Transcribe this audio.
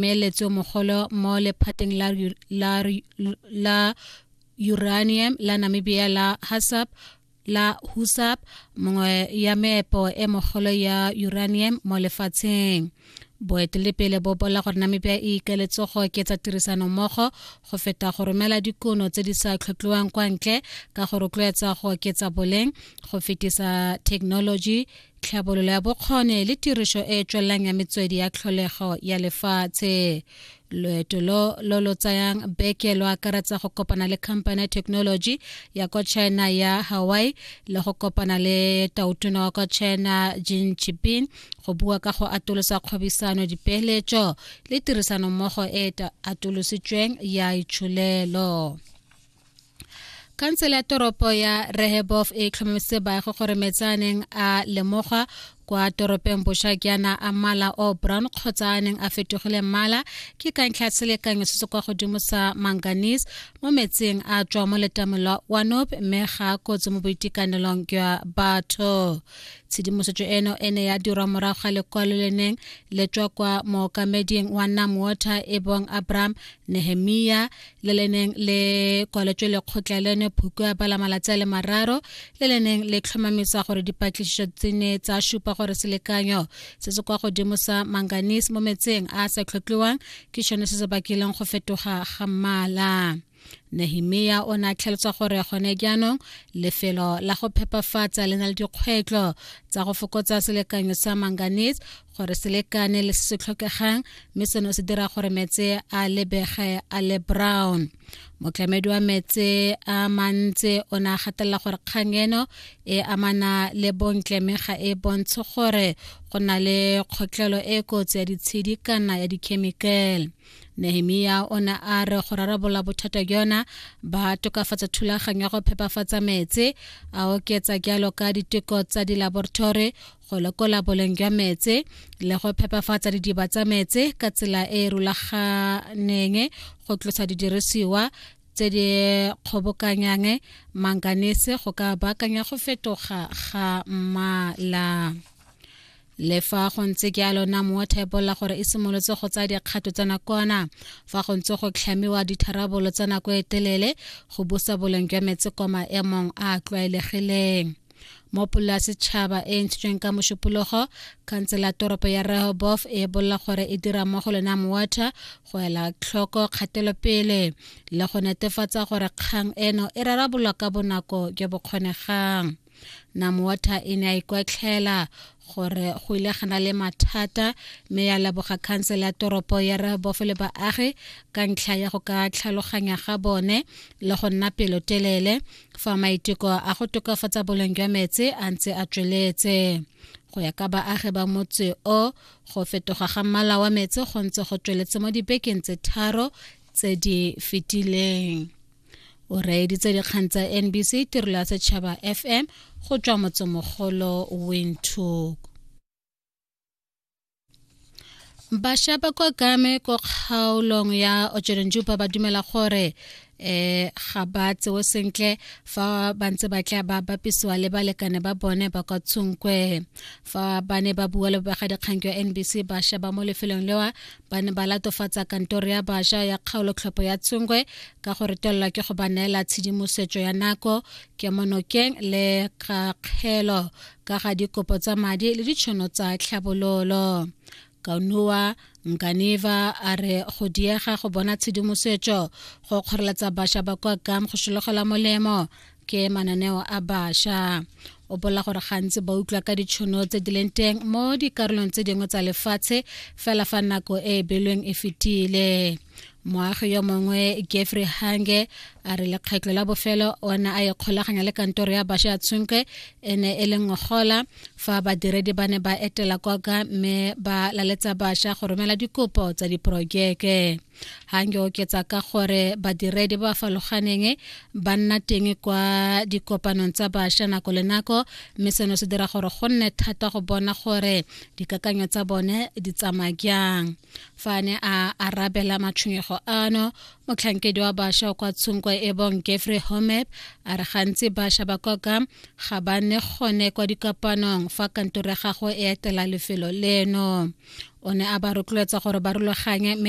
meeletso mogolo mo lephateng la, la, la uranium la namibia la hasap la husap mongwe ya meepo e mogolo ya uranium mo lefatsheng boetelepele bo bola gore namibia e ikeletse go oketsa tirisano mmogo go feta go romela dikono tse di sa tlhotlhiwang kwa ntle ka go rotloetsa go oketsa boleng go fetisa thekenoloji tlhabololo ya bokgone le tirišo e e tswelelang ya metswedi ya tlholego ya lefatshe loeto lo lo lo tsayang beke lo akaretsa go kopana le company ya technology ya kwa china ya hawaii le go kopana le tautona wa kwa china jin chipin go bua ka go atolosa kgwebisano dipeeletso le tirisanommogo e atolositsweng ya itsholelo khansele ya toropo ya rehebof e tlhomametse baagi gore metsaneng a lemogwa kwa toropeng boša ke ana a mmala o brown kgotsa a neng a fetogile mmala ke ka ntlha selekanyo se se kwa godimo sa manganese mo metsing a tswa mo letamong lwa wanop mme ga kotsi mo boitekanelong jwa batho tshedimosetso eno e ne ya dirwa morago ga lekwalo le neng le tswa kwa mookameding wa nam water e bong abraham nehemia le le neng le kwaletswe lekgotla leno phoko ya bala malatsi a le mararo le le neng le tlhomamisa gore dipatlisiso tse ne tsa supa gore selekanyo se se kwa godimo sa manganese mo metseng a a sa tlhotlhiwang ke sone se se bakileng go fetoga ga mmala nehemia o ne a tlhalosa gore gone jaanong lefelo la go phepafatsa le na le dikgwetlho tsa go fokotsa selekanyo sa manganese gore se lekane le se se tlhokegang mme seno se dira gore metse a lebege a le brown motlamedi wa metse a mantse o ne a gatelela gore kgang eno e amana le bontle mme ga e bontshe gore go na le kgotlhelo e kotsi ya ditshedi kana ya dikhemikale nehemia o ne a re go rarabolola bothata jona ba tokafatsa thulaganyo ya go phepafatsa metse a oketsa jalo ka diteko tsa dilaboratory go lekola boleng jwa metse le go phepafatsa didiba tsa metse ka tsela e e rulaganeng go tlosa didirisiwa tse di kgobokanyang manganese go ka baakanya go fetoga ga mmala le fa go ntse jalo namo wa thebolla gore e simolotse go tsaya dikgato tsa nakwana fa go ntse go tlhamiwa ditharabololo tsa nako e telele go busa boleng jwa metsi kwa maemong a a tlwaelegileng mo pola setšhaba e e ntshitsweng ka mošupologo khansela toropo ya rehobof e bolela gore e dira mo go lena mowater go ela tlhoko kgatelopele le go netefatsa gore kgang eno e rarabolwa ka bonako jo bo kgonegang namowater e ne a ikwatlhela gore go ile gana le mathata mme ya leboga khansele ya toropo ya rehobof le baagi ka ntlha ya go ka tlhaloganya ga bone le go nna pelotelele fa maiteko a go tokafatsa boleng jwa metsi a ntse a tsweletse go ya ka baagi ba motse o go fetoga ga mmala wa metsi go ntse go tsweletse mo dibekeng tse tharo tse di fetileng o reeditse dikgang tsa nbc tirelo ya setšhaba fm go tswa motsemogolo windhoek bašwa ba kwa kame ko kgaolong ya ojerenjupa ba dumela gore eh ga ba tsewe sentle fa ba ntse ba tla ba bapisiwa le balekane ba bone ba kwa tshonkwe fa ba ne ba bua le bobegadikgang jwa nbc bašwa ba mo lefelong lewa ba ne ba latofatsa kantoro ya bašwa ya kgaolotlhopho ya tshonkwe ka go retelelwa ke go ba neela tshedimosetso ya nako kemonokeng le kakgelo ka ga dikopo tsa madi le ditšhono tsa tlhabololo kaunua nkaneva a re go diega go bona tshedimosetso go kgoreletsa bašwa ba kwa kam go sologela molemo ke mananeo a bašwa o bola gore gantsi ba utlwa ka ditšhono tse di leng teng mo dikarolong tse dingwe tsa lefatshe fela fa nako e e belweng e fetile moagi yo mongwe jeffrey hange a re lekgetlho la bofelo o ne a ikgolaganya le kantoro ya basha ya tshunke e ne e le ngogola fa badiredi ba ne ba etela koka mme ba laletsa basha go romela dikopo tsa diporojeke hange oketsa ka gore badiredi ba faloganeng ba nna teng kwa dikopanong tsa basha nako le nako mme seno se dira gore go nne thata go bona gore dikakanyo tsa bone di tsamaya jang fa a ne a arabela matshwenyego ano motlhankedi wa bašwa kwa tshunko e bong jeffrey homep a re gantsi bašwa ba koka ga ba ne gone kwa dikapanong fa kantoro ya gago e etela lefelo leno o ne a ba rotloetsa gore ba rulaganye mme